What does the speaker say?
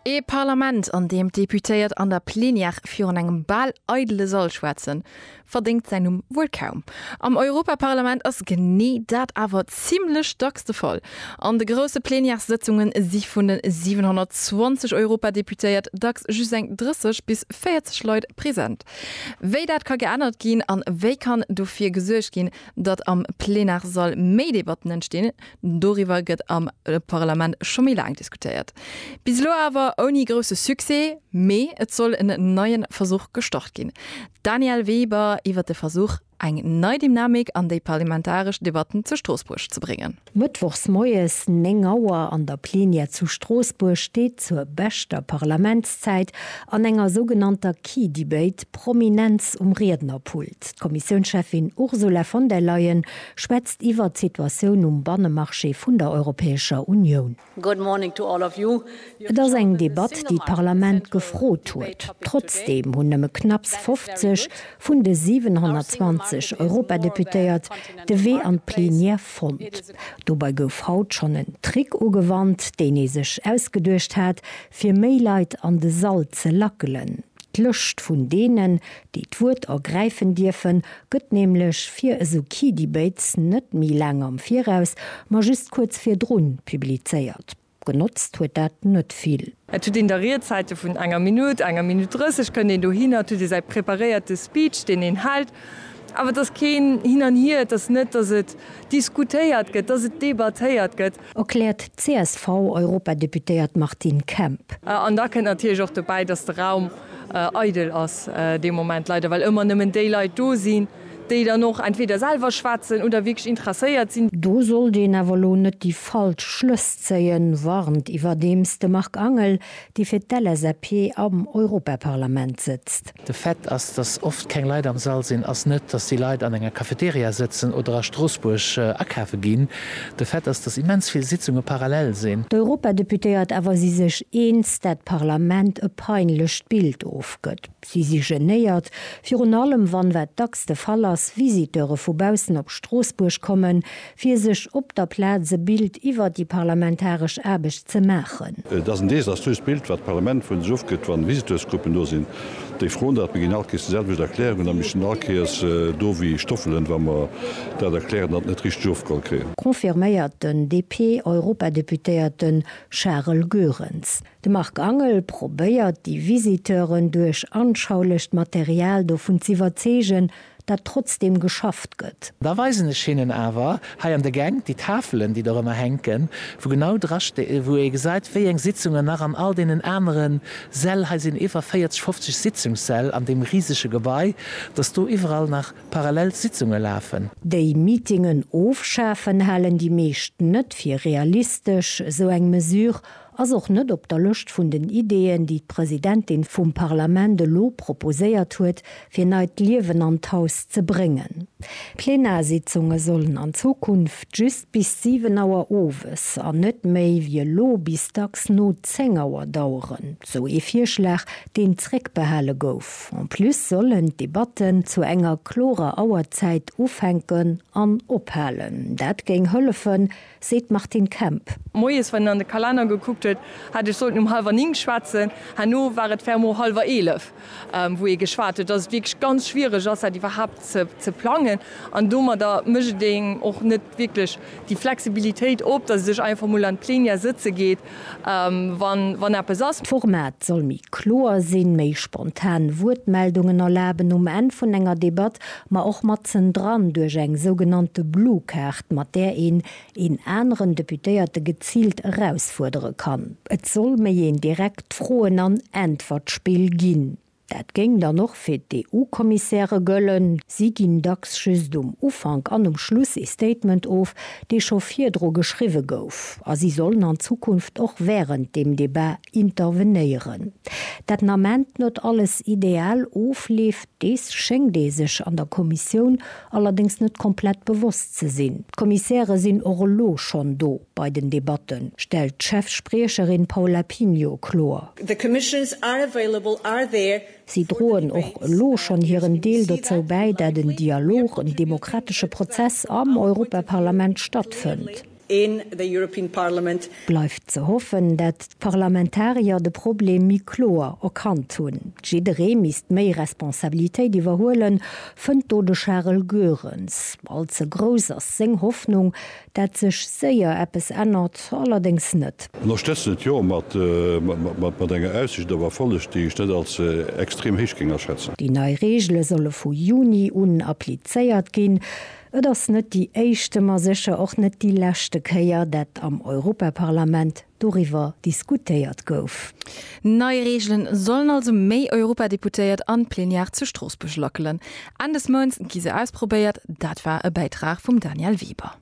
Ee Parlament, an deem d'Deputéiert an der Plenière virun engem bal eidele Sall schwätzen, verdéngt säin Numm wuel kaum. Am Europaparlament ass genee dat awer zimmlech dacks de Fall. An de grousse Plenièressëtzunge si vun de 720 Europadeputéiert dacks just eng 30 bis 40 Leit present. Wéi dat ka geännert ginn an wéi kann dofir gesuergt ginn, datt am Plenarssall méi Debatten entstinn, Doriwwer gëtt am Parlament scho méi laang diskutéiert. Bis elo awer ouni grousse Succès. Mee et soll en neie Versuch gestart ginn. D'Danièle Weber iwwer de Versuch, eng nei Dynamik an déi parlamentaresch Debatten zu Stroossbuerg ze bréngen. Mëttwochs moies 9 Auer an der Plenière zu Stroossbuerg steet zur beschter Parlamentszäit an enger sougenannter Key Debate d'Prominenz um Riednerpult. D'Kommissiounscheffin Ursula von der Leyen Schwätzt iwwert d'Situatioun um Bannemarché vun der Europäescher Unioun. Et ass eng Debatt, déi d'Parlament gefrot huet. Trotzdeem hunn nëmme knapps 50 vun de 720 Europadeputéiert de Wee an d'Plenière fonnt. Dobei gouf haut schonn en Trick ugewannt, deen ee sech ausgeduecht hat, fir méi Leit an de Sall ze lackelen, d'Lëscht vun deenen, déi d'Wuert ergräifen dierfen, gëtt nämlech fir esou Key Debates net méi laang am Viraus, ma just kuerz virdrun publizéiert. Genotzt huet dat net vill. Et huet een da Riedzäite vun enger Minutt, enger Minutt 30 kënnt een dohinner, et huet ee säi preparéierte Speech, deen een hält, awer et ass keen Hin an Hier, et ass net, datt et diskutéiert gëtt, datt et debattéiert gëtt. Erkläert d'CSV-Europadeputéiert Martine Kemp. An da kënnt natierlech och dobäi, datt de Raum eidel ass dee Moment, leider, well ëmmer nëmmen déi Leit do sinn, déi dann och entweder selwer schwätzen oder wierklech interesséiert sinn. Do sollt een awer elo net déi falsch Schlëss zéien, warnt iwwerdeems de Marc Angel. déi fir d'LSAP am Europaparlament sëtzt. De Fait ass, datt oft keng Leit am Sall sinn, ass net, datt déi Leit an enger Cafeteria sëtzen oder a Stroossbuerg akafe ginn. De Fait ass, datt immens vill Sitzunge parallel sinn. D'Europadeputéiert awer si sech eens, dat d'Parlament e peinlecht Bild ofgëtt. Si si genéiert, virun allem wann, wat dacks de Fall ass, Visiteure vu baussen op Stroossbuerg kommen, fir sech op der Plaz e Bild iwwer déi parlamentaresch Aarbecht ze maachen. Et ass en desaströst Bild, wat d'Parlament vun sech ofgëtt, wann Visiteursgruppen do sinn, déi froen dat, mee ginn all Kéiers déi selwecht Erklärungen a missten all Kéiers do wéi Stoffelen, wa mer dat erklären an et net richteg ofgeholl kréien. Confirméiert den DP-Europadeputéierte Charel Goerens. De Marc Angel probéiert déi Visiteuren duerch anschaulecht Material dovun z'iwwerzeegen, dat trotzdem geschafft gëtt. Da weisen ech hinnen awer hei an de Gäng déi Tafelen, déi dorëmmer hänken, wou genau dra sti-, wou ee gesäit, wéi eng Sitzungen nach an all deenen anere Säll, hei sinn iwwer 40, 50 Sitzungssäll an deem risege Gebai, dass do iwwerall nach parallel Sitzunge lafen. Déi Meetingen ofschafen halen déi meescht net fir realistesch, esou eng Mesure. Ass och net op der Lëscht vun den Ideeën, déi d'Presidentin vum Parlament elo proposéiert huet, fir neit Liewen an d'Haus ze bréngen. D'Plenarsitzunge sollen an Zukunft just bis 7 Auer owes an net méi wéi elo bis dacks no 10 Auer daueren, sou ee Virschlag, deen zréckbehale gouf. En plus sollen d'Debatten zu enger klorer Auerzäit ufänken an ophalen. Dat géing hëllefen, seet d'Martine Kemp. Moies, wann een an de Kalenner gekuckt huet, hätt ech sollten um hallwer Nink schwätzen. Herno war et fermement hallwer Eelef, wou ee geschwat huet, dass et wierklech ganz schwiereg ass, dat iwwerhaapt ze plangen. An domadder mécht een och net wierklech déi Flexibilitéit op, dass ee sech einfach emol an d'Plenière sëtze geet wann eppes ass. D'Format soll méi kloer sinn, méi spontan Wuertmeldungen erlaben um Enn vun enger Debatt, ma och matzen dran duerch eng sougenannte Blue Card, mat där een een aneren Deputéierte geziilt erausfuerdere kann. Et soll méi een direkt Froen an Äntwertspill ginn. Dat géing dann och fir d'EU-Kommissäre gëllen. Si ginn dacks just um Ufank an um Schluss ee Statement of, dee scho virdru geschriwwe gouf. A si sollen an Zukunft och wärend dem Debat intervenéieren. Dat den Ament net alles ideal ofleeft, dees schéngt ee sech an der Kommissioun Allerdéngs net komplett bewosst ze sinn. D'Kommissäre sinn och elo schonn do bei den Debatten, stellt d'Chef-Spriecherin Paula Pinho kloer. The commissions are available, are there. Si droen och elo schonn hiren Deel dozou bäi, dat en Dialog, en demokratesche Prozess am Europaparlament stattfënnt. in the European Parliament. Bleift ze hoffen, dat d'Parlamentarier de Problem méi kloer erkannt hunn. Jidderee misst méi Responsabilitéit iwwerhuelen, fënnt do de Charel Goerens. All ze grouss ass seng Hoffnung, dat sech séier eppes ännert, allerdéngs net. Ënnerstëtzen et jo, mat enger Aussicht op Erfolleg, déi ech net als extrem héich géing aschätzen. Déi nei Reegele solle vu Juni un applizéiert ginn. Et ass net déi éischte, ma sécher och net déi leschte Kéier, dat am Europaparlament doriwwer diskutéiert gouf. Nei Reegelen sollen also méi Europadeputéiert an d'Plenière zu Stroossbuerg lackelen. Enn des Mounts gi se ausprobéiert. Dat war e Bäitrag vum Daniel Weber.